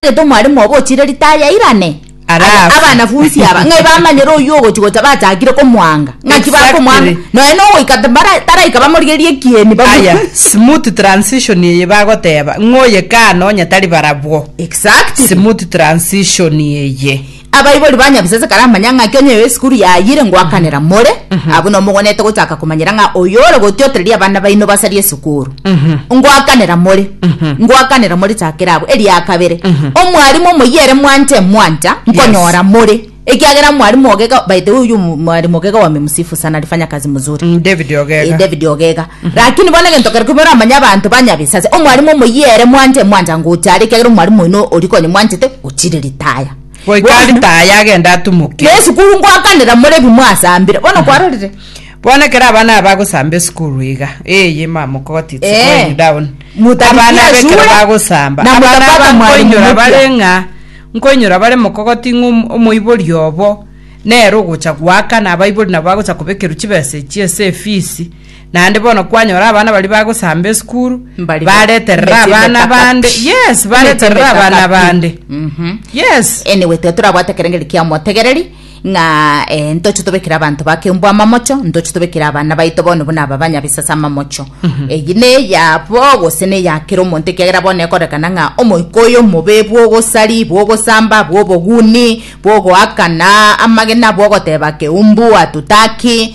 Onyasae tomwarimu obo ochire ritari airane? Ara Aya afe. abanafunsi aba ng'ai bamanyire oyio ogochi gocha bachakire komwanga? Ng'aki Exactly. bakomwanga? Nonya nogoika tabara- taraika bamorigerie ekieni babu- aya smooth transition eye bagoteba ng'oye kano onye tari barabwo Exactly. smooth transition eye Abaibori ba Nyabisase karamanya ng'a Kenya eyo esukuru yayire ngoakanera more, abwo nomogonete gochaka komanyera ng'a oyo ore gotiotereria abana baino basarie esukuru. Ngoakanera more, ngoakanera more chakera abwo. Eria kabere, omwarimu omoyia ere mwancha emwancha, nkonyora more, ekiagera omwarimu Ogega, by the way, oyio omwarimu Ogega wame msifu sana, alifanya kazi mzuri. Mm, David Ogega. Eh, David Ogega. Lakini bono egento keria kobua oramanye abanto banyabisa ase omwarimu omoyia ere mwanche mwancha ngocha are, ekiagera omwarimu oino oria konya mwanchete gochire ritaya. Goika Bono, ritaya agende atumuke. na esukuru ngoakanera more ebi mwasambire. Bono kwarorire? Bono ekero abana aba bagosamba esukuru iga, eye mamokoti it's Eh. going down. Mutaripia Abana aba ekero shule, bagosamba, na abana mutapata aba mwalimu nkoinyora mupya. bare ng'a, nkoinyora bare mokogoti ng'a om- omoibori obo nere ogocha goakana, abaibori nabo bagocha kobekerwa chibesa echio ase efisi. Naende bono kwanyora abana baria bagosamba esukuru Mbariga. bareterera Emechie abana emeka bande kapi. yes Emechie bareterera emeka abana kapi. bande Mhm. yes anyway tiga torabwate ekerengeri kia omotegereri ng'a eh, ntoche tobekere abanto ba keumbu amamocho ntoche tobekere abana baito bono buna aba banyabisase amamocho eyi neyabo gose neyakera omonto ekiagera bono ekorekana ng'a omoika oyo omobe bwogosari bwogosamba bwoboguni bwogoakana amagena bwogoteba keumbu hatutaki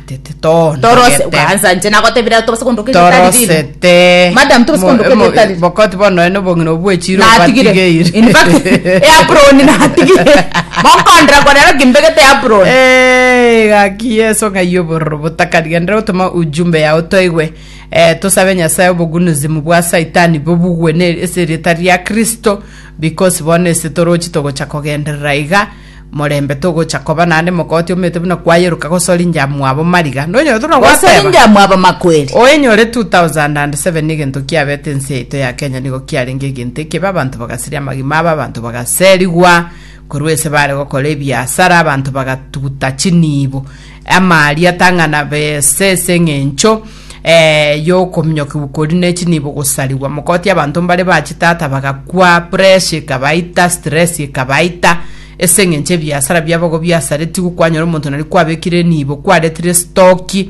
Torose, ukaansa nche nagotebire aro tobase kondoka egere tari rire. torosete Madam, tobase kondoka egere tari rire. bokoti bono ene obong'ina obwo echiro Natigire. obatigeire In fact, eh, apron natigire. Mokondera kwa rero kimbegete apron. Eh, gaki yeso ng'ai obororo botaka rigenderera gotoma ujumbe yao toigwe eh, tosabe nyasaye obogunuzimu bwa saitani bobugwe ne ase erieta ria kristo because bono ase torochi togocha kogenderera iga Morembe togocha koba naende mokoti omete buna kwayeruka gosori njamwabo mariga. Nonyore tuna Gosori gwateba. njamwabo makweri. Oenyore 2007 negento kiabete ense yaito ya Kenya nigo kiarenge egento ekebe abanto bagasiria amagima abo abanto bagaserigwa korwa ese bare gokora ebiasara abanto bagatuguta chinibo amaria tang'ana bese ase eng'encho eh, y'okominyokigwa kori ne chinibo gosarigwa. Mokotia abanto mbare ba chitata bagakwa, pressure ekabaita, stress ekabaita, ase eng'encho ebiasara biabo igo biasaretigwe, kwanyora omonto nari kwabekire enibo, kwaretire stoki,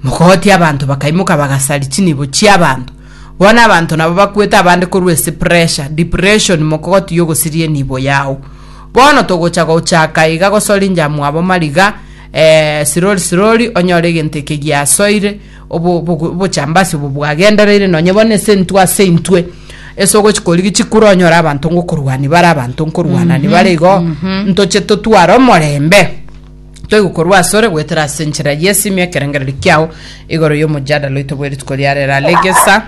mogogotia abanto bakaimoka bagasari chinibo chiabanto bono abanto nabo bakwete abande korwa ase pressure depression mokogoti yogosiria enibo yao bono togocha gochaka iga gosorinja mwabo mariga Ee, sirori sirori, onyore egento eke giasoire, obo- obo- obochambasi obo bwagendereire nonye bono ase intwe ase intwe ase ogochi korigi chikure onyore abanto ngokorwania bare abanto nkorwana nibare igo ntoche totware omorembe toigokorwa asore goetera ase enchera y'esimi ekerengereri kiao Igoro y'omojadala oito bwe rituko ria rero alegesa.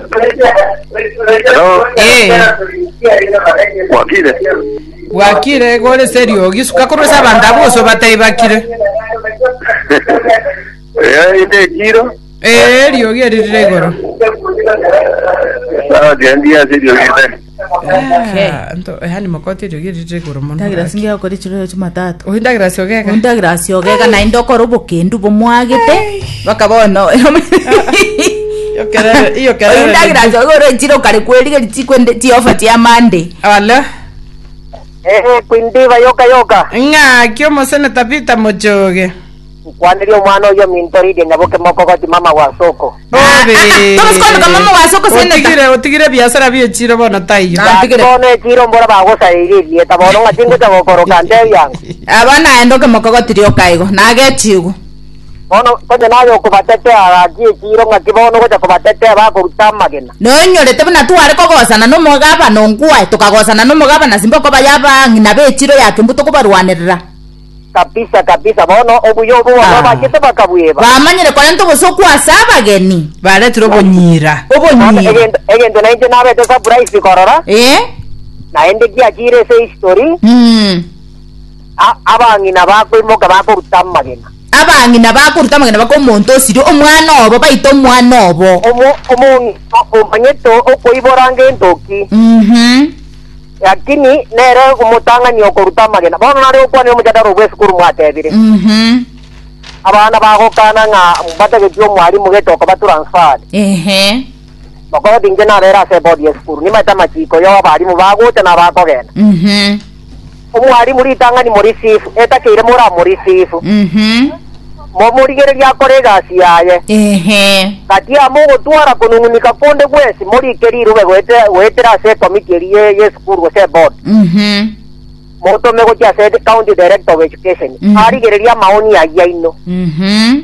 Hello. Ee. Wakire. Bwakire gore serio gisuka korwa ase abanto abo gose obatei bakire. Eh, inde kiro. Ee riogi eririre igoro. Sawa, gendia siri ogende. Okay. Ah, nto- yaani makoti erio gerire igoro mono Ndagera gaki. singe okore chirero chimatatu. Oyi ndagera ase ogeka. Ndagera ase ogeka naende okora obokendu bomwagete bakaba ono. Iyo kerere- iyo kerere Oyi ndagera ase ogeka ore chiro kare kwerigeri chikwende chiofa chia Monday. Ala. Eh, kwindiba yoka yoka. Ng'aki omoseneta Peter Mochoge. Nkwaneria omwana oyio ominto Lidia nyaboke mokogoti mama wa soko. Otigire otigire ebiasara bie echiro bono taiyo. Gaki bono echiro mbora bagosaririe erieta bono ng'a tingocha gokoroka ntebi ango. Aba naende okemokogoti rioka igo, nagechigwe. Bono onye naye okobatetea gaki echiro ng'aki bono ogocha kobatetea bakoruta amagena. Noinyorete buna tware kogosana nomogabana onkwaye, tokagosana nomogabana Simboko baye abang'ina b'echiro ya Kembu tokobarwanerera. Kabisa, kabisa, bono obuya obo bono Ah. bachete bakabweba. Bamanyire korenta obosokwa ase abageni. Baretire obonyira. Bono Obonyira. egento egento nainche nabete surprise korora, Eh? naende giachire ase history, Mm. a- abang'ina bakoimoka bakoruta amagena. abang'ina bakoruta amagena baka omonto osiri omwana obo baita omwana obo Omo- omong'ina omanyete okoibora ng'entoki. Mhm. Lakini nere omotang'ani okoruta amagena, bono nare okwanire omojadara o bw'esukuru mwatebire, Mhm. abana bagokana ng'a mbatageti omwarimu gete okoba transferred. Ehe. Bakora oti inche nabere ase ebodi y'esukuru, nimaete amachiko yo abarimu bagocha na abakogenda. Mhm. Omwarimu ritang'ani morisifu, etakeire moramorisifu. Mhm. momorigererie akore egasi yaye. Ehe. Gati yamo ogotwara konung'unika konde gwesi morike rirube goete, goetera ase ekomiti eria ye, ye esukuru gose eboard. Mhm. Motome gochia ase the county director of education. Mhm. Arigererie amaoni ayio aino. Mhm.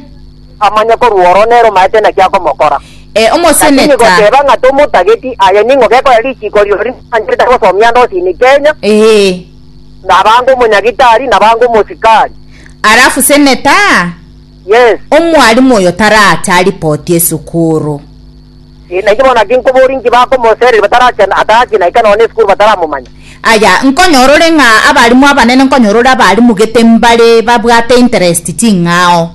Amanye korwa oro nere omaete naki akomokora. Eh, Lakini omoseneta. goteba ng'a tomotageti, aye ning'o gekoya richiko rirorio rimancherete gosomia ndosi in Kenya? Eh. nabange omonyagitari, nabange omosikari. Alafu seneta, Yes. omwalimu oyo tarache aripoti esukuru. Eh, nainche bono naki nkoboria inki bakomosereri batarache atarache naika nonya esukuru bataramomanya. Aya, nkonyorore ng'a abalimu abanene nkonyorore abalimu gete mbare babwate interest ching'ao.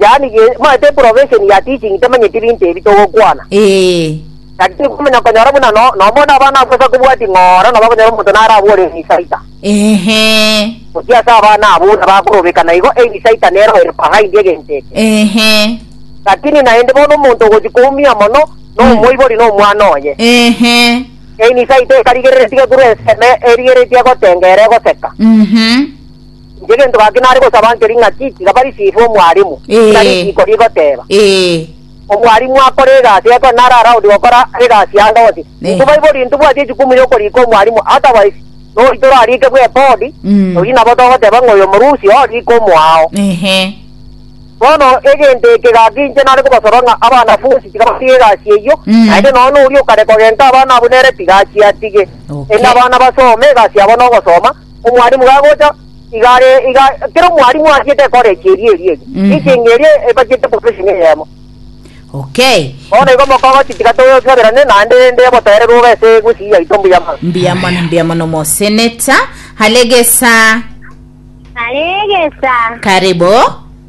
Yaani ge, moete profession ya teaching temanyeti binto ebi togokwana. Ee. Lakini komanya konyora buna no, nomone abana abwo ase kobwati ng'ora nabo akonyora omonto narabore Ebisaita. Ehe. Gochia ase abana abwo buna bakorobeka na igo Ebisaita nero ere behind egento eke. Ehe. Lakini naende bono omonto ogochi koumia mono nomoibori na omwana oye. Ehe. Ebisaita ekarigereretie korwa enseme erigereretie gotenga ere egoseka. Mhm. Inche gento gaki nare gosaba ncherie ng'aki tiga barisive omwarimu, Ee. na risiiko rigoteba. Ee. Omwarimu akore egasi ye ekero nare araudi gokora egasi yande onsi. Ee. Intwe baibori ntibwati echikumu y'okorika omwarimu, otherwise nori torarike bw'ebodi, Mm. oyio nabo togoteba ng'a oyo omorusi oo rika omoao. Ehe. Bono egento eke gaki inche nare kobasaba ng'a abanafunsi tiga batige egasi eyio, Mm. naende nonya noria okare kogenka abana abwo nere tiga achiatige. Okay. Erinde abana basome egasi yabo nogosoma, Omwalimu gagocha, iga are, iga kera omwalimu ariete ekore echi eri eri eri. Mhm. Echi enga eri ebachete profession eyemo. Okay. Bono igo mokogochi tiga toyosaberane naende rende obotere bobe ase egusii yaito mbuya mono. Mbuya mono, Aye. mbuya mono moseneta. Halegesa, Halegesa. karibu.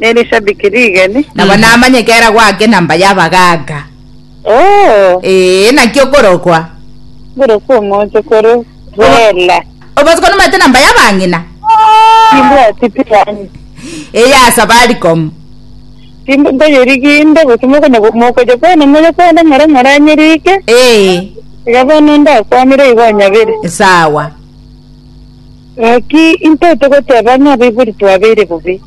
nerishabiki rigeni. Nabo namanye kera gwake na mba y'abagaaka. Oo. Ee, naki okorokwa. Ngorokwa omonto kore Bella. Obosiko nomanyete na mba y'abang'ina? Timbwati pi yaani. Eyasa Baricom. Timb- ntoyerigi inde gose mokonya mokoja kwana moja kwana ng'ora moranyerike. Ee, Iga bono ndakwanire igo onyabere. sawa. Gaki, intwe togoteba ng'a abaibori twabeire bobe.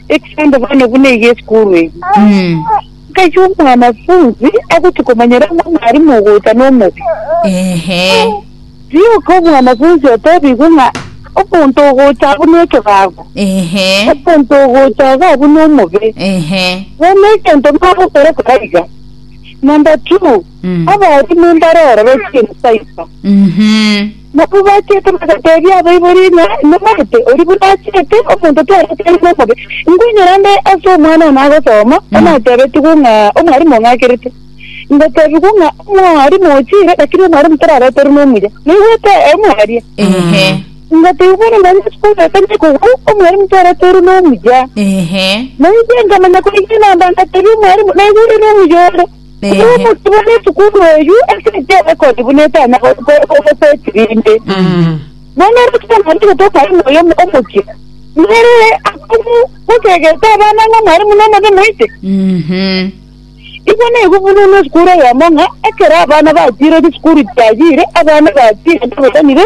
Ekisaanto bono buna iga esukuru eyio, ngaki omwanafunzi agochia komanyora ng'a omwarimu ogocha nomobe. Rioka omwanafunzi otebigwe ng'a omonto ogocha abwo nekebago, omonto ogocha iga abwo nomobe. Bono egento nagokora kora iga. Number two, abarimu mbaroro bachiire Cyber. Nabo bachete bagateebia abaibori ng'a nomanyete oria buna achete, omonto twareti are nomobe. Inkwenyora nde ase omwana one agosoma, onatebetigwe ng'a omwarimu ong'akerete. Ngoteebigwa ng'a omwarimu ochire, lakini omwarimu torabeterwe nomuya. Naigwete aya mwaria? Ehe. Ngoteebigwa ng'a nonya ase omonto tari kogwao, omwarimu twareterwe nomuya. Ehe. Nainche nkamanya korigia namba ngateebia omwarimu, naigure nomuya ore. Ehe. Nomotwe bw'esukuru eyio ase enchera erekodi buna etanya gosetiri rinde. Mm. Nonya rutwe nari gotoka imo oyo omochie. Nere akomu gosegete abana ng'a mwarimu nomobe moite. Mhm. Igo naigo buna ne esukuru eyemo ng'a ekero abana batiire chisukuru chiagire abana batiire baberanire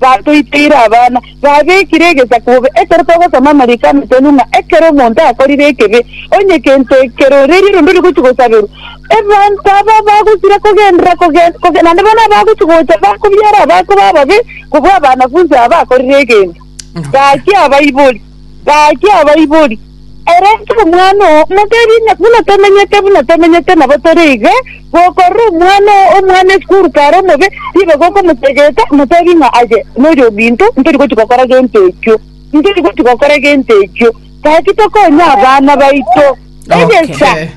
batoiteire abana, babekire egesaku bobe. Ekero togosoma amariko amo tonywe ng'a ekero omonto akorire ekebi, onye kento ekeroreria rende ore gochia gosaberwa, ebanto aba bagosira kogenderera kogenda kogenda naende bono abagochia gocha bakobiara abakwe bababe kobua abanafunsi aba bakorire egento. Gaki abaibori. Gaki abaibori, Ere Omwana o Omogeni, na buna tomenyete, buna tomenyete nabo tore iga, gokorora omwana oo, omwana isiko oruka are omobe, tibe gokomotegeta, motebi ng'a aye noyo ominto, ntori gochia gokora gento ekio, ntori gochia gokora gento ekio, gaki tokonye abana baito. Egesa, Okay.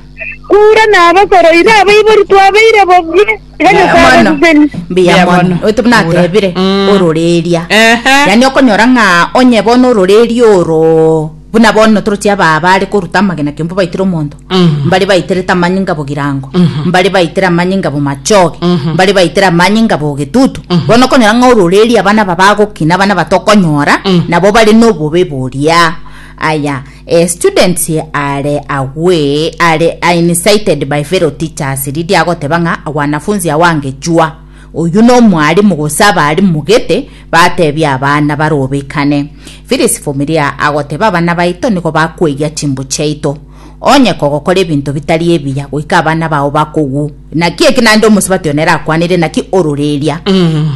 kura na abakoro iga abaibori twabeire bobie, iga Nyasae Mwana. abaseseni. mbuya Mbuya mono mono. oite buna Kura. atebire Mm. ororeria Ehe. yani okonyora ng'a onye bono ororeria oro buna bono torochi ababa are koruta amagena kiombo baitire omonto Mhm. mbare baitere tamanyi ngabo girango Mhm. mbare baitere amanyi ngabo machoge Mhm. mbare baitere amanyi ngabo getutu Mhm. bono okonyora ng'a ororeria abana aba bagokina abana batokonyora Mm. nabo bare nobobe boria aya A student are away are incited by fellow teachers riria agoteba ng'a wanafunzi awange chua oyio na omwalimu gose abarimu gete batebia abana barobekane Phyllis Vumilia agoteba abana baito nigo bakweyia chimbu chiaito onye kogokora ebinto bitari ebiya goika abana bao bakogu Naki eke naende omosubati one erakwanire, naki ororeria,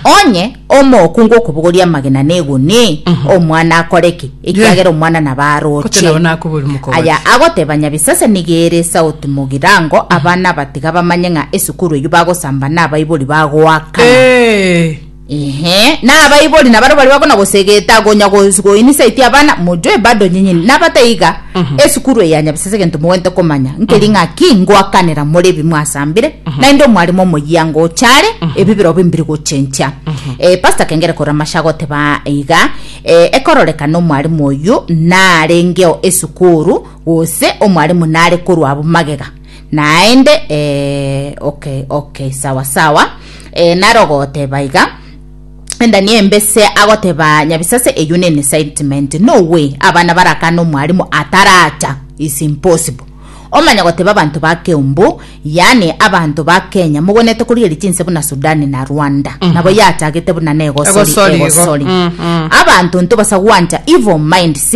Onye omookungu okobogoria amagena neguni, omwana akore ki? Ekiagera omwana nabo Gose aroche. nabo nakoboria omokogori. Aya agoteba Nyabisasani iga ere sauti mogirango, abana abatiga bamanye ng'a esukuru eyio bagosamba nabaibori bagoakana. Ee. Inhe, na abaibori nabaro baria bakona gosegeta gonya gos- goinisa iti abana mojoe bado nyinyini nabataiga esukuru eye ya nyabisese egento mogwente komanya nkeri ng'aki ngoakanera more ebi mwasambire naende omwarimu omoyia ngochare ebi birobe mbiri gochencha Eh, pastor kengere korora amashe agoteba iga eh, ekororekana omwarimu oyu narengeo esukuru gose omwarimu nare korwa abwo magega Naende eh, okay, okay, sawa sawa eh, narogoteba iga endani embese agoteba nyabisase eyo nene sentiment no way abana barakana omwarimu ataracha is impossible omanya goteba abanto ba keumbu yani abanto ba kenya mogonete korigeria chinse buna sudani na rwanda mm -hmm. nabo yachagete buna negosori Egosori igo. egosori mm -hmm. abanto ntobasa gwancha evil minds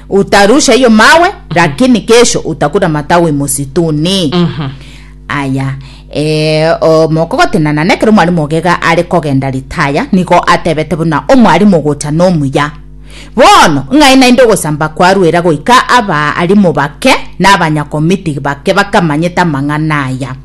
Utarusha hiyo mawe mm -hmm. lakini kesho utakuta matawi msituni mm -hmm. aya e, mokogotenana nekero omwalimu ogega are kogenda ritaya nigo atebete buna omwalimu gocha nomuya bono ng'ai naende ogosamba kwarwera goika abaalimu bake na abanyakomiti bake bakamanyete amang'ana aya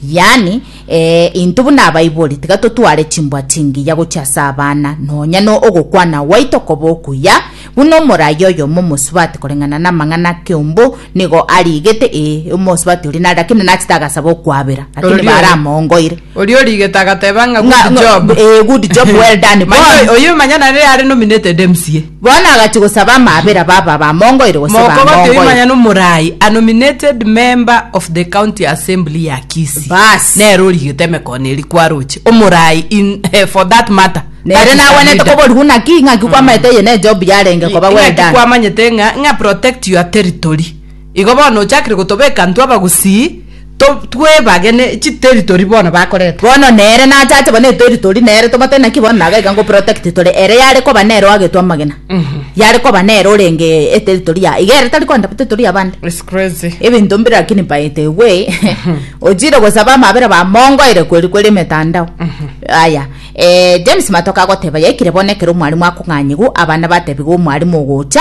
yani Ee, intwe buna abaibori tiga totware chimbwa chingiya gochia ase abana, nonya no ogokwana gwaito koba okuya, buna omoraia oyomo omosubati koreng'ana namang'ana akeombo nigo arigete, ee, omosubati oria nare, lakini nachete agasaba okwabera, lakini Oria- baramoongoire. Oria origete agateba ng'a Ng'a- good job. ng'a- ee, good job, well done, Manya bono. oyo- oyo manya nare are nominated MCA. Bono agachia gosaba amaabera baba abamongoire gose Moko Gotebi bamongoire. manyene omoraai a nominated member of the county assembly ya Kisii Baas. nere origete emekono eria kwa roche omoraai in eh, for that matter Nere that is a nagwenerete leader. koborigwa naki, ng'aki kwamaete eye ne Job yarenge koba well Ing'aki done. kwamanyete ng'a ng'a protect your territory Igo bono ochakire gotobeka intwe abagusii twebagene chiteritory bono bakorete. Bono nere nachache bono eteritory nere tobatari naki bono naga iga ngoprotect tore ere yare koba nere oagetwe amagena yare koba nere orenge eteritory yaye iga ere tari koenda teritory yabande ebinto mbire lakini by the way ochire gosaba amabera bamongoire kweri kweri emetandao aya James Matoke agoteba yaikire bono ekero omwarimu akong'anyigwa abana batebiwa omwarimu ogocha.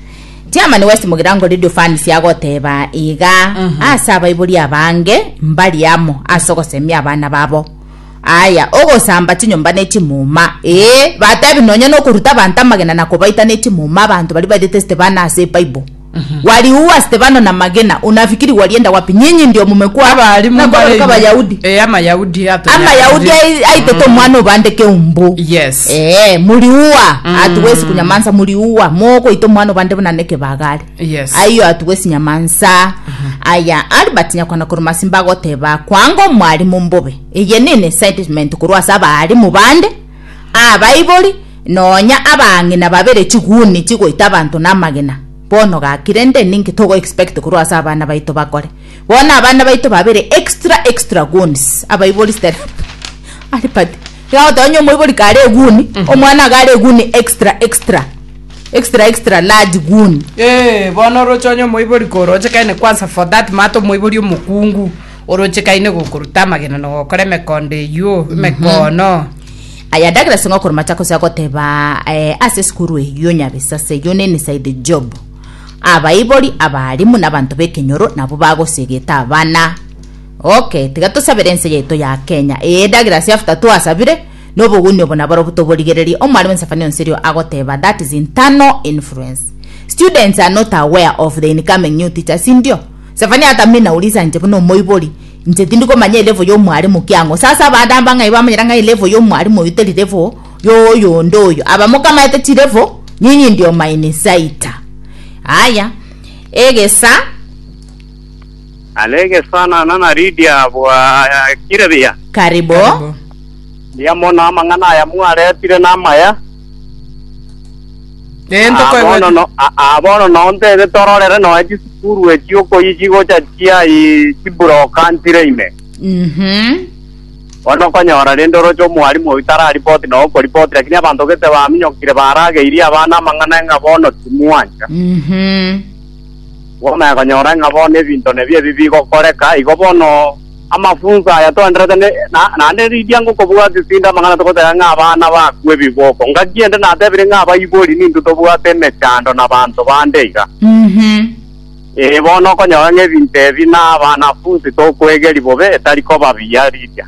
Tiamani wesimogera ngo Radio Fancy agoteba iga ase abaibori abange mbari amo ase ogosemia abana babo. Aya ogosamba chinyomba ne chimuma. Ee, batebi nonya nokoruta abanto amagena na kobaita ne chimuma abanto bari bairete Stefano ase Bible. Waliua Stefano na magena, unafikiri walienda wapi? Nyinyi ndio mumekua Abarimu na kubaruka mbare- Abayahudi. Eh, Amayahudi ato- Amayahudi ai- aitete omwana obande keumbu. Yes. Ee, muriua atuwezi kunyamansa muriua mogoita omwana obande buna nekebagare Yes. aiyo atuwezi nyamansa aya albert nyakwana koromasi mbagoteba kwanga omwarimu mbobe eye nene sentiment korwa ase abaarimu bande abaibori nonya abang'ina babere chiguni chigoita abanto namagena bono gakire nde ninki togo expect korwa ase abana baito bakore bono abana baito babere extra extra guns abaibori step albert Tigagotoa onye omoibori kare eguni, omwana iga are eguni extra extra. Extra extra large guni. Eeh, bono oroche onye omoibori korochekaine kwanza for that matter omoibori omokungu, orochekaine gokoruta amagena na gokora emekondo eyio, emekoono. Aya Douglas ngokora Machakos agoteba eh, ase esukuru eyio nyabisa ase eyio ne inside job. Abaibori, abaalimu na abanto b'ekenyoro nabwo bagosegete abana. Okay tiga tosabere ense yaito ya Kenya eye edagere ase after twasabire na obogunia obo naborobwo toborigererie omwarimu Nsephania Onsirio agoteba that is internal influence students are not aware of the incoming new teacher sindio Sephania atamina uri ase inche buna omoibori inche tindi komanya elevo ya omwarimu ki ang'o sasa abande amba ng'ai bamanyera ng'ai elevo ya omwarimu oyo teri levo ya oyo onde oyo aba mokamaete chirevo nyinyi ndio mainsaita aya egesa Are gesanana na Lidia abwo akire buya. Kari bo. Mbuya mono amang'ana aya mwaretire namaya. Nento Aa bono kwegwete. no- a- aa bono nontebe tororere nonya chisukuru echi okoyi chigocha chiai chiburoka ntire ime. Mhm. Bono okonyora rende oroche omwalimu oyo tararipoti nonya okoripoti lakini abanto gete baminyokire barageirie abana amang'ana ng'a bono timwancha. Mhm. Bono ekonyora ng'a bono ebinto nebio ebi bigokoreka, igo bono amafunso aya twenderete naende riria ngokobwatia tindi amang'ana togoteba ng'a abana bakwa ebiboko. Ngaki ende natebire ng'a abaibori nintwe tobwate emechando nabaanto bande iga? Ee, bono okonyora ng'a ebinto ebi nabanafunsi tokoegeria bobe etari koba biya riria.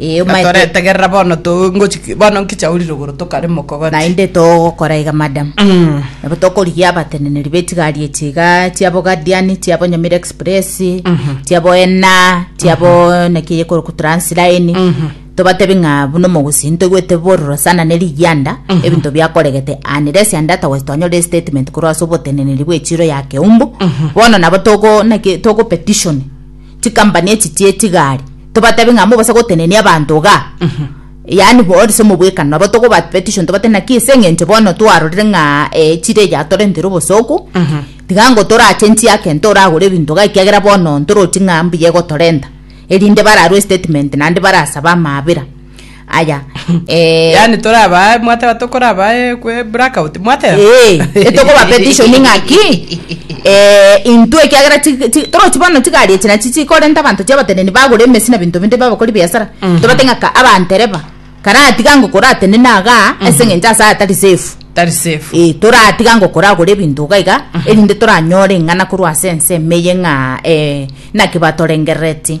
Ee, Ng'a omaete- toretegerera bono to- ngochi- bono nkiche aurire igoro tokarema okogati. naende togokora iga madam Mm. nabo tokorigia abateneneri betigari echi iga chiabo guardian chiabo nyamira express chiabo ena chiabo naki eyekoroku transline tobatebi ng'a buna omogusi ntoigwete bororo sana ne rigianda ebinto biakoregete unless and otherwise twanyore estatement korwa ase oboteneneri bw'echiro ya keumbu bono nabo togo naki togo petition chikampani echi chiechigari tobatabi ng'a mobase gotenenia abanto iga yaani boris se omobwekano nabo togoba petition tobate naki ase eng'encho bono twarorire ng'a eh, chire eria torentire obosoku tiga ngo torachenchie ake ntoragore ebinto iga ekiagera bono ntorochi ng'a mbuya egotorenta erinde bararwe statement naende barasabe amaabera aya eh, yaani torabae mwateba tokorabae kwe blackout mwateba Eh, etokoba petition ng'aki eh, intwe ekiagera ti- ti- torochi bono chigari echi nachi chikorenta abanto chiabateneni bagura emesi na binto binde babakori biasara tobate ng'aka abantereba karatiga ngokoratenene aga ase ng'encho ase atari safe tari safe Eh, toratiga ngokora agore ebinto iga iga erinde toranyore ing'ana korwa ase ense emeye ng'a eh, naki batorengerereti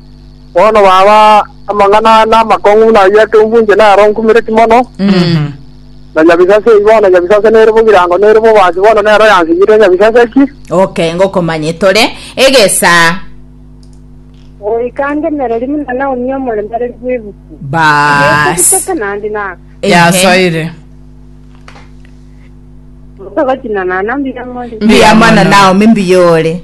Bono baba, amang'ana aya namakong'u buna ayio ekeumbu inche nero nkumireti mono, na nyabisase eyi bono, nyabisase nere bo birango, nere bo oboansi bono nero yansigete nyabisase eki. Okay, ngokomanye tore egesaa. Oikangemereri buna Naomi omoremereri bw'ebuku. Bas. Ekobitete naende na Ehe. Yasoire. motogachina nana mbiamori. Mbiamana Naomi mbiyore.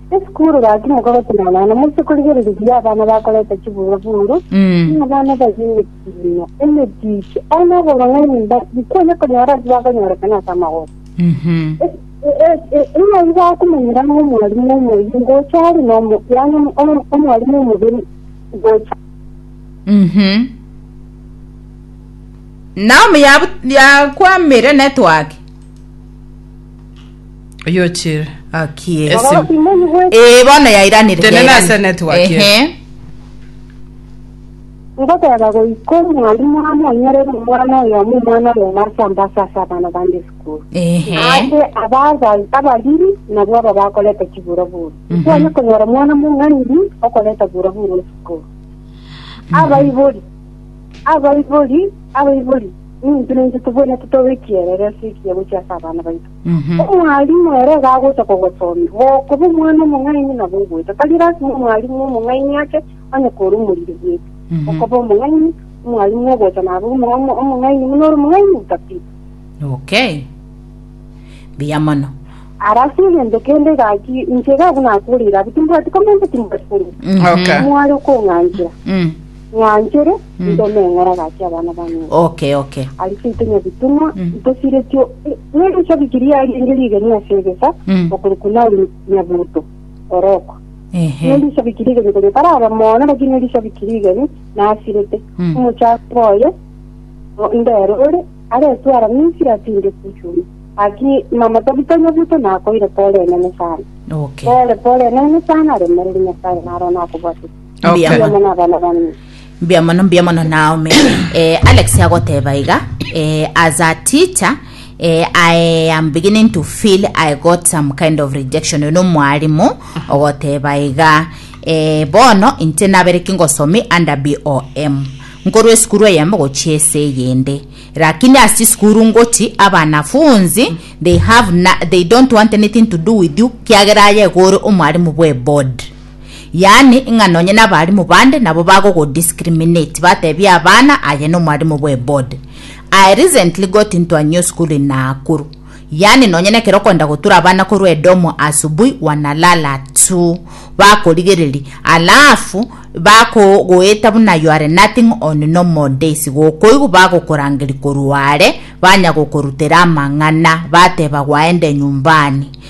Esukuru gaki mokagotenana nonya moise korigereria buya abana bakoreta chibura-buru, Mm. buna abana baria emetiino, emetiche, ore n'oborong'aini mba- bikonya konyora ase bakonyorekana ase amagoro. Mhm. Ing'ai bakomenyera ng'a omwarimu omoyio ngocha are nomo, yaani omo- omo- omwarimu omoberi ngocha. Mhm. Naomi yabu- yakwamire network. Oyochire. Akie. Ese- Ororo Simoni bwe Eh, bono yairanire. Tenena yairani- ase network ye. Ehe. ngoteba goika omwalimu amonyerere omwana oyomo omwana oyomo ase ambasa ase abana bande esukuru Ehe. ase abazazi abariri nabwo aba bakoreta chiburoburo Mhm. twanye konyora omwana mong'aniri okoreta buroburo esukuru abaibori abaibori abaibori Nintwe naintwe tobwenerete tobe ekierero ase ekiya gochia ase abana baito. Omwalimu ere iga agocha kogosomia, gokoba omwana omong'aini nabo ogoeta. Tari lasima omwalimu omong'aini ake onye kore omoriri bweka. Okoba omong'aini, omwalimu ogocha nabe omo- omo- omong'aini buna ore omong'aini otatiga. Okay. Mbuya mono. Ara ase egento kende iga ki inche iga abwo nakoreire abwo timbwati comment timbwati comment. Okay. Mware okong'anchera. Mm. Ng'wanchore, Mm. inche omeng'ora agaachia abana ba Neri. Okay, okay. Aria seito Nyabitunwa, Mm. ntosiretio n'erisabiki riaye eri rigeni ase egesa, Mm. okorokwa Naomi Nyabuto, orokwa. Ehe. N'erisabiki rigeni koria taraba mono, lakini n'erisabiki rigeni nasirete. Mm. Omochakwa oye, o- ndero ore, aretwara Misiri atinde Kushuni. Lakini mama Tabita Nyabuto nakoire pole enene sana. Okay. Pole pole enene sana, aremereri Nyasaye naro nakobwatete. Mbuya Okay. mono. Mwana nabana bane. mbuya mono mbuya mono naomi eh, alex agoteba iga eh, as a teacher eh, i am beginning to feel i got some kind of rejection uno mwarimu ogoteba iga eh, bono inche nabere kingosomi under bom nkorwa esukuru eyemo gochia ese eyende lakini asi sukuru ngochi abanafunzi they have na, they don't want anything to do with you kiagera aye gore omwarimu bwe board Yaani, ng'a nonye nabalimu bande nabo bagogo-discriminate, batebie abana aye nomwalimu bw'eboard. I recently got into a new school in Nakuru. Yaani nonye nekero okoenda gotura abana korwa edomu asubui wanalala tu. Bakorigereri. Alafu, bakogoeta buna you are nothing on normal days. Gokoigwa bagokorangeri korwa are, banya gokorutera amang'ana, bateba gwaende nyumbani.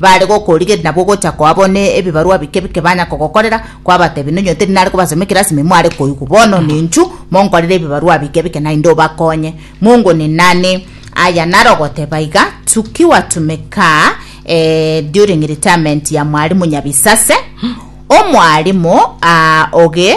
Baare gokorigeria nabwo ogocha kwabo ne ebibarwa bike bike banya kogokorera, kwabatebia, Nonye oteri nare kobasomia ekerasimi mware koigwa, bono ninchu monkorere ebibarwa bike bike naende obakonye. Mungu ni nani? Aya naro goteba iga, Tukiwa tumeka eh, during retirement ya mwalimu Nyabisase, omwalimu ah, oge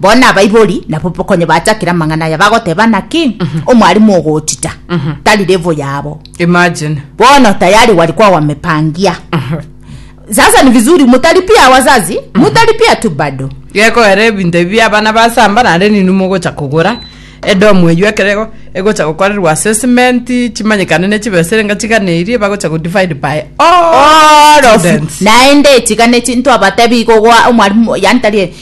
Bono abaibori nabo konya bachakire amang'ana aya bagoteba naki omwarimu ogochita tari level yabo. Imagine. Bono tayari walikuwa wamepangia. Sasa ni vizuri mutalipia wazazi, mutalipia tu bado. Geko ere ebinto ebi abana basamba naende ninwe mogocha kogora edomu eyio ekero ego- egocha gokorerwa assessment chimanyekane ne chibesa erenga chigana eria bagocha go divide by all All of students. naende echiga nechi ntwabatebi igo gwa omwarimu yani tari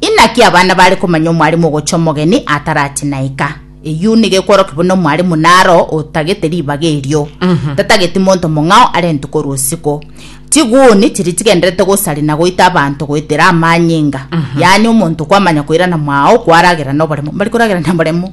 Inaki abana bare komanya omwalimu ogocha omogeni atarache naika? Eyio nigo ekworokia buna omwalimu naro otagete ribaga erio, tatageti monto mong'ao arentwe korwa osiko. Chiguni chiria chigendererete gosari na goita abanto goetera amanyinga, yaani omonto kwamanya koirana mwao kwaragera noboremo. Mbari koragera naboremo?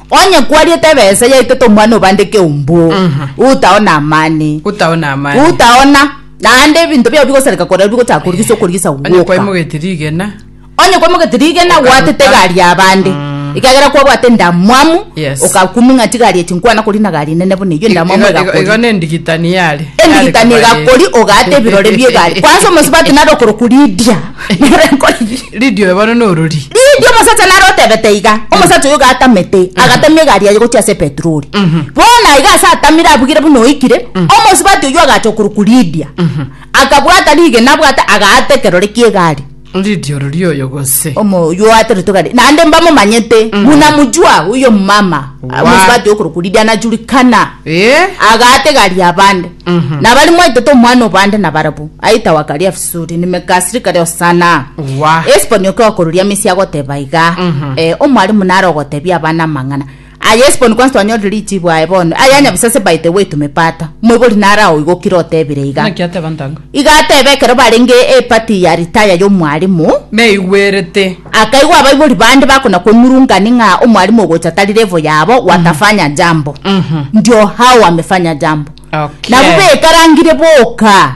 Onye kwariete ebesa yaitete omwana obande keumbu, utao namani, Utao namani. utaona, naende ebinto biao bigosareka korero bigochaka korigisa okorigisa Onye gwoka. kwaimogeti rigena. Onye kwamogete rigena Okaruta. gwatete egari yabande ekagera kwabwate endamwamu Yes. okakuming'a chigari echi nkwana kori na gari nene buna eyio endamwamu Igo- igo- Igo egakori nendigitani yare. endigitani Yare egakori kobare. ogate ebirore bia egari kwansa omosubati nare okoroku ridia Lidia oyo bono norori. Lidia omosacha nare otebete iga, omosacha oyo gatamete, agatamia egari yaye gochia ase epetroli. Bono aiga ase atamire abugire buna oikire, omosubati oyio agacha okorokwa Lidia. Akabwata rigena abwate, agaata ekerore ki'egari. Lidia orori oyo gose. Omo oyio oateretwe egari. Naende mbamomanyete, buna mojua oyio omomama, Wa. omosubati okorokwa Lidia anajurikana. Ee. Agaata egari y'abande. Nabo ari mwaetete omwana o bande nabarabwo, aetawa Kariafu. Suri ni mekasiri kare osana Wa. esiponi oke okoruria mesi agoteba iga eh, omwalimu nare ogotebia abana amang'ana aya esiponi kwansi twanyore richibu aye bono aya nyabisase by the way tumepata moibori nare aoigokire otebire iga Naki ateba ntango. iga atebe ekero barenge epati ya ritaya y'omwalimu Neigwerete. akaigwa abaibori bande bakona kong'urungani ng'a omwalimu ogocha tari level yabo watafanya jambo ndio hao wamefanya jambo Okay. nabo bekarangire boka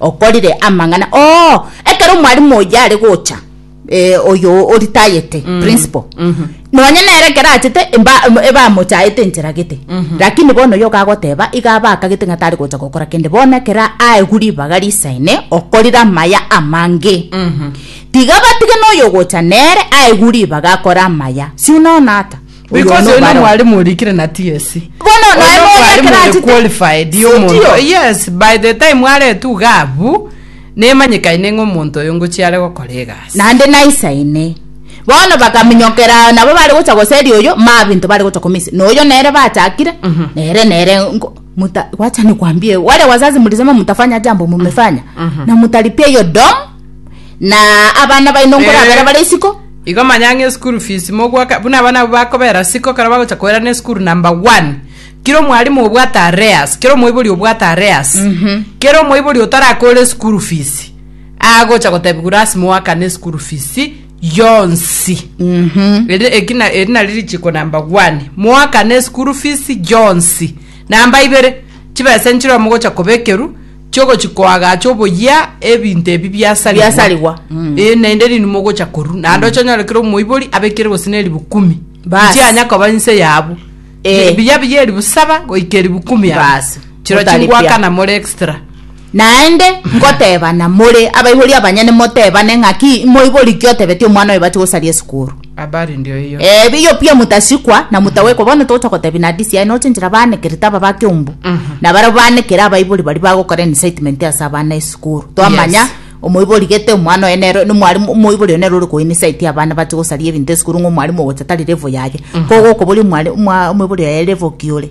okorire amang'ana oo ekero omwalimu oyio are gocha eh, oyo oritayete mm. principal mm -hmm. nonye nere ekero achete ebamochaete enchera gete mm -hmm. lakini bono yo kagoteba iga abakagete ng'a tari gocha gokora kende bono ekero aegu ribaga risaine okorire amaya amange mm -hmm. tiga batige noyo gocha nere aegu ribaga akora amaya si unaona ata Because Oyono oyio baro. nomwalimu orikire na TSC. Bono Oyio naye nomwalimu noyekera ore achete- qualified Si omonto. ndio? Yes, by the time aretu iga abu nemanyekaine ng'a omonto oyo ngochia are gokora egasi. naende naisaine bono bakaminyokera nabo bare gocha goseria oyo mabinto bare gocha komisa na oyo nere bachakire nere nere nko- muta wacha nikwambie wale wazazi mlisema mtafanya jambo mmefanya na mtalipia hiyo dom Na abana baino nkorabera bare isiko. Igo manya ng'a eschool fees mogoaka buna abana abwo bakobera siko kero bagocha koerana eschool number one kera omwalimu obwate arrears kera omoibori obwate arrears kera omoibori otarakore eschool fees agocha gotebiwa lasima oakane eschool fees yonsi Eri- eki na- eri nari richiko number one moakane eschool fees yonsi namba ibere chibesa nchire mogocha kobekerwa chiogochia koagacha oboyia ebinto ebi biasarigwa, Biasarigwa, mm. Eh, naende rinde mogocha koru naende oche onyore kera omoibori abekire gose na eribu kumi Bas. nchianya koba inse yabu Eh. biya biya eribu saba goika eribu kumi yabu. Bas. chiro Otaripia. chingwakana more extra naende ngotebana more abaibori abanyene motebane ng'aki moibori ki otebetie omwana oyo bache gosaria esukuru Habari ndio hiyo. Eh, biyo pia mutasikwa na mutawekwa bono togocha gotebi na DCI nochenchera banekerete aba ba kiombu na barabo banekere abaibori bari bagokora incitement ase abana esukuru twamanya Yes. omoibori gete omwana oye nero ni mwarimu omoibori oye nero ore ko incite abana bache gosaria ebinto esukuru ng'a omwarimu ogocha tari level yaye kogokoboria omwari- omwa- omoibori oye level ki ore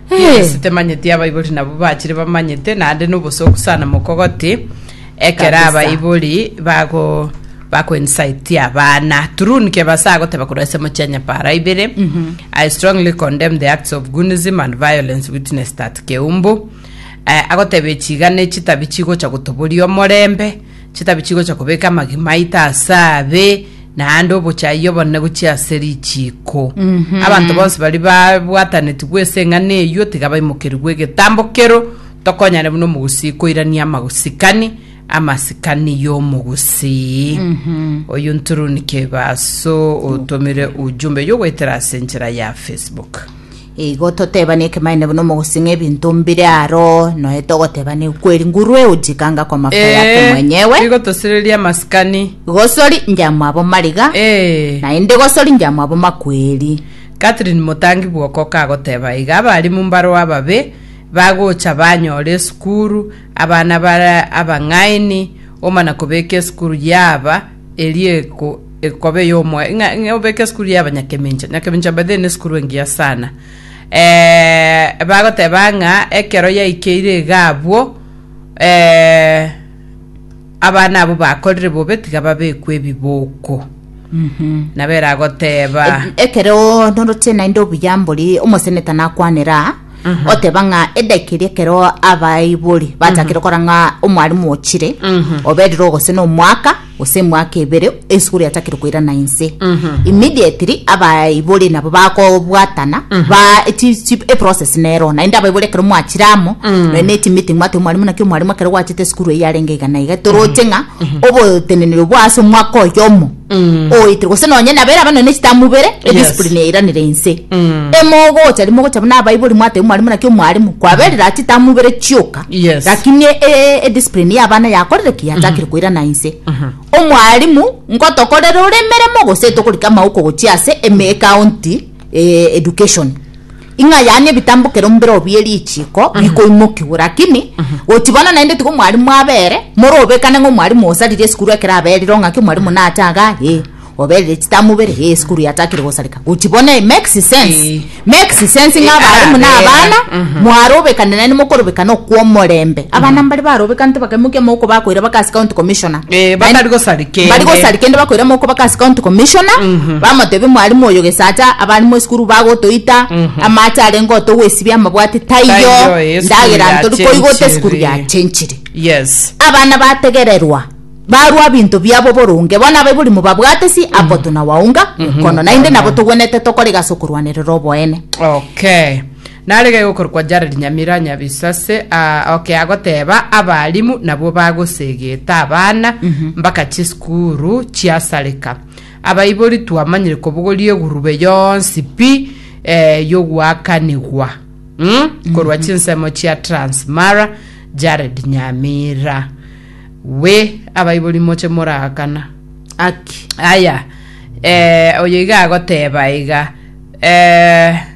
Yes, temanyeti abaibori nabo bachire bamanyete naende nobosoku sana mokogoti ekero Kabisa. abaibori bago bakoinsighti abana true nike base agoteba korwa ase mochia nyapara ibere i strongly condemn the acts of gunism and violence witnessed at keumbu Eh, agoteba echiga ne chitabi chigocha gotoboria omorembe Chitabi chigocha kobeka amagima aito ase abe, naende obochayia obonene gochia ase richiiko. Abanto bonsi baria babwatanetigwe ase eng'ana eyio tiga baimokerigwe egetambo kero, tokonyane buna omogusii koirania amasikani amasikani y'omogusii. Oyio nturuni kebaso otomire ujumbe y'ogoetera ase enchera ya Facebook. Igo totebani ekemanyereria buna omogosing'a ebinto mbire aro, noe togotebani kweri nguru euji kanga kwa mafuta yake Ee, mwenyewe. igo tosireria amasikani. Gosori njamwabo mariga, Ee. naende gosori njamwabo makweri. Catherine Motangi Bwoko kagoteba iga abarimu mbarwa ababe bagocha banyore esukuru abana bare abang'aini omana kobeka esukuru yaaba eria eko ekobe yomo ng'a ng'a obeke esukuru ya abanyakemincha nyakemincha by the way ne esukuru engiya sana eh, bagoteba ng'a ekero yaikeire iga abwo eh, abana abo bakorire bobe tiga babekwe ebiboko nabo eragoteba Ekero noroche naende obuya mbori omoseneta nakwanera oteba ng'a edaki eria ekero abaibori bachakire okora ng'a omwarimu ochire oberire ogose na omwaka gose emwaka ebere esukuru yachakire koirana inse immediately abaibori nabo bakobwatana ba chi- chi- eprocess nero naende abaibori ekero mwachire amo nonye na echimeeting mwateba omwarimu naki omwarimu ekero gwachete esukuru eyio yarenge iga na iga toroche ng'a oboteneneri obwo ase omwaka oyomo Mm. oitire gose nonye nabere abanene echitamubere Yes. ediscipline yairanire inse Mm. emogocha rimogocha buna abaibori mwateba omwarimu naki omwarimu kwaberire ati tamubere chioka Yes. lakini e- e- ediscipline yabana yakorire ki yachakire koirana inse omwarimu ngotokorere ore emeremo gose tokorika amauko gochia ase eme county eh, education Ing'a yaani ebitambokero mbero bie richiiko bikoimokigwe, rakini gochi bono naende tigo mwarimu abere, morobekane ng'a omwarimu osaririe esukuru ekero aberire ong'aki omwarimu nache igaa ee oberire chitamu ibere ee esukuru yachakire gosareka. Gochi bono e makes sense, Ee. makes sense ng'a Ee, abarimu na abera. abana Mhm. mwarobekane naende mokorobekana okw'omorembe. Abana mbare barobekanete bakaimokia amaboko bakoira bakasi county commissioner. Eh, Naende- bakari gosarigwa. Mbari kende. gosari kende bakoira moko baka as county commissioner bamotebia mwalimu oyo gesacha abarimu esukuru bagotoita amache arenge otogwesibia amabwati taiyo Taiyo, eh, esukuru ndagera ya ntori koigota chenchire. esukuru ya chenchire Yes. abana bategererwa barwa binto biabo boronge bono abaibori mobabwate si apo tunawaunga mkono naende nabo togwenete tokore gase okorwanerera oboene Okay. Narege gokorokwa Jared Nyamira Nyabisase aa oke agoteba abalimu nabwo bagosegeta abana mbaka chisukuru chiasareka. Abaibori twamanyire kobogoria egurube yonsi pi eh, yoguakanigwa mm? korwa chinsemo chia Trans Mara Jared Nyamira we abaibori moche moraakana Aki. aya eh, oyo iga agoteba iga eh,